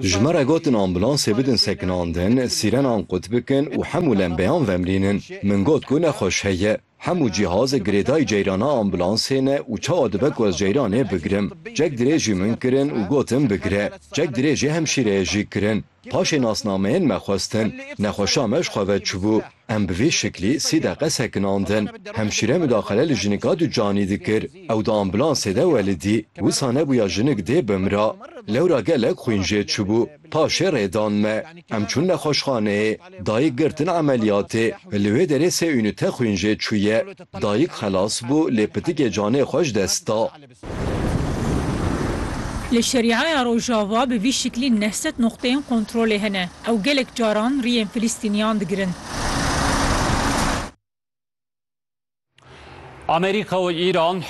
Ji me re gotin ambulansê bidin sekinandin, sîrenan qut bikin û hemû lembeyan vemrînin. Min got ku nexweş heye. Hemû cîhazê girêdayî ceyrana ambulansê ne û çawa dibe ku ez ceyranê bigirim. Çek dirêjî min kirin û gotin bigire. Çek dirêjî hemşîreyê jî kirin. Paşê nasnameyên me xwestin. Nexweşa me ji xwe ve çûbû. Em bi vê şeklê sê deqe sekinandin. Hemşîre mudaxele li jinika ducanî dikir. Ew di ambulansê de welidî. Wisa nebûya jinik dê bimira. Lewra gelek xwîn jê çûbû. Paşê rê dan me. Em çûn nexweşxaneyê. Dayik girtin emeliyatê. Li wê derê sê unîte xwîn jê çûye. Dayik xelas bû lê pitikê canê xwe ji dest da. Li Şeriaya Rojava bi vî şiklî neh sed noqteyên kontrolê hene. Ew gelek caran riyên Filistîniyan digirin. Amerîka û Îran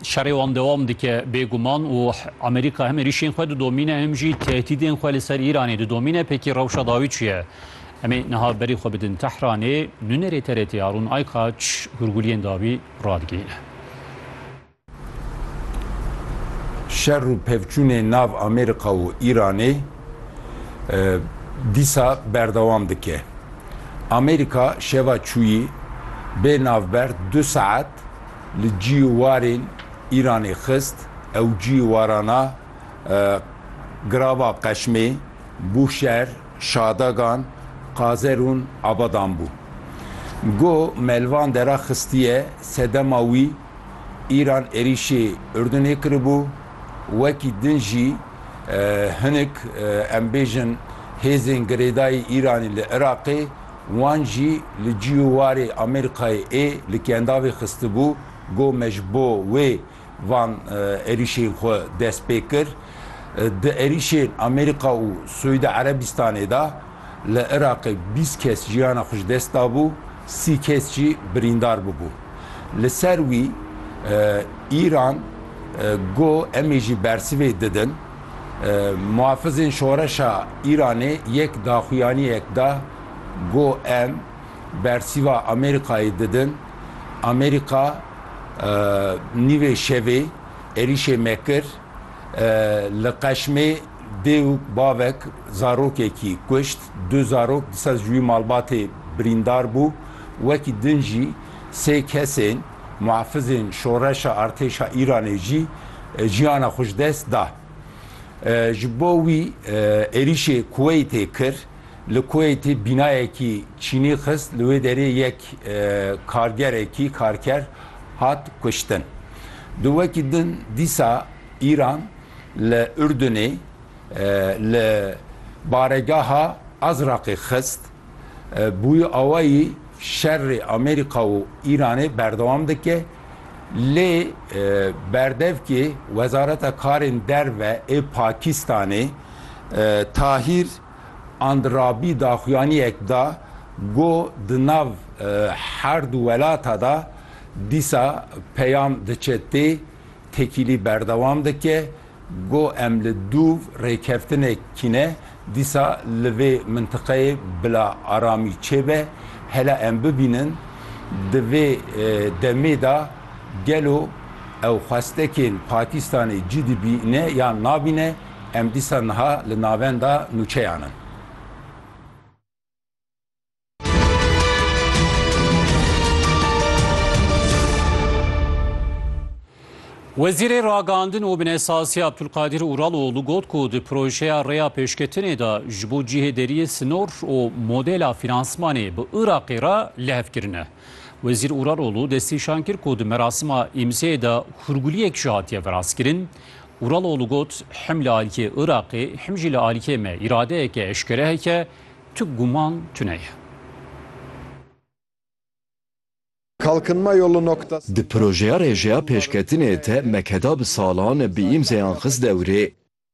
şerê wan dewam dike bêguman û Amerîka hem êrîşên xwe didomîne hem jî tehdîdên xwe li ser Îranê didomîne. Pêkî rewşa dawî çi ye? Em ê niha berî xwe bidin Tehranê. Nûnerê TRT'ê Harûn Aykaç hûrguliyên dawî radigihîne. Şer û pevçûnê nav Amerîka û Îranê dîsa berdewam dike. Amerîka şeva çûyî bê navber du saet li cîyî warên Îranê xist ew cîyî warana girava qeşmê bû şer. Şadagan, Qazer ûn Abadan bû. Go Melvan dera xistiye sedema wî, îran êrîşê Urdunê kiribû, wekî din jî hinik em bêjin hêzên girêdayî Îranî li Iraqê wan jî li cî û warê Amerîkayê ê li kendavê xistibû, go me ji bo wê van êrîşên xwe dest pê kir. Di êrîşên Amerîka û Siûdî Erebîstanê de li Iraqê bîst kes jiyana xwe ji dest dabû, sî kes jî birîndar bûbû. Li ser wî Îran got em ê jî bersivê didin. Muhafizên Şoreşa Îranê yek daxuyaniyek da got em bersîva Amerîkayê didin. Amerîka nîvê şevê êrîşê me kir, li Qeşmê dê û bavek zarokekî kuşt, du zarok di ser ji wî malbatê birîndar bû, wekî din jî sê kesên muhafizên şoreşa artêşa Îranê jî jiyana xwe ji dest da. Ji bo wî êrîşê Kuweytê kir. Li Kuweytê bînayekî çînî xist, li wê derê yek kargerekî, karker, hat kuştin. Di wekî din dîsa Îran li Urdunê li baregeha Azraqê xist. Bûyî awayî şerê Amerîka û Îranê berdewam dike. Lê berdevkê Wezareta Karên Derve ê Pakîstanê Tahîr Andirabî daxuyaniyek da ku di nav her du welata de dîsa peyam diçe tê, tekîlî berdewam dike ku em li dûv rêkeftinek kine dîsa li vê mintiqeyê bila aramî çêbe, hela em bibînin di vê demê de gelo ew xwestekên Pakîstanê cî dibîne yan nabîne. Em dîsa niha li navenda nûçeyan in. Wezîrê Ragihandin û Binêsazî Abdulkadir Uraloglû got ku di projeya rêya pêşketinê de ji bo cihê deriyê sinor û modela fînansmanê bi Iraqê re lihef kirine. Wezîr Uraloglû destnîşan kir ku di merasima îmzeyê de hûrguliyek jî hatiye veraskirin Uraloğlu got, Him li alîkê Iraqê, him jî li alîkê me îradeyeke eşkere heke, tu guman tune ye. Kalkınma Yolu Noktası Di projeya rêjeya pêşketinê te Mekeda bi salan bi îmzeyan xist dewrê.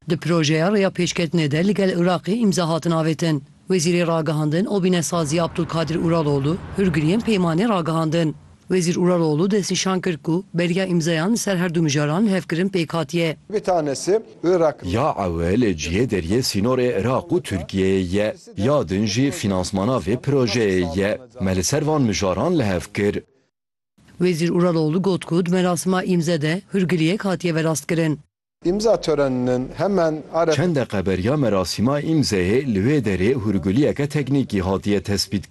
Di projeya rêya pêşketinê de ligel Iraqê îmza hatin avêtin. Wezîrê Ragihandin û Bînesaziya Abdulkadir Uraloğlu hûrgiriyên peymanê ragihandin. Wezîr Uraloğlu destnîşan kir ku belgeya îmzayan li ser her du mijaran hevkirin pêk hatiye. Ya ewil cihê deriyê sînorê Iraq û Tirkiyeyê ye, ya din jî fînansmana vê projeyê ye. Me li ser van mijaran li hev kir. Wezîr Uraloğlu got ku di merasima îmze de hûrgiliyek hatiye verastkirin. Çend deqe beriya merasima îmzeyê li wê derê hûrgiliyeke teknîkî hatiye tespît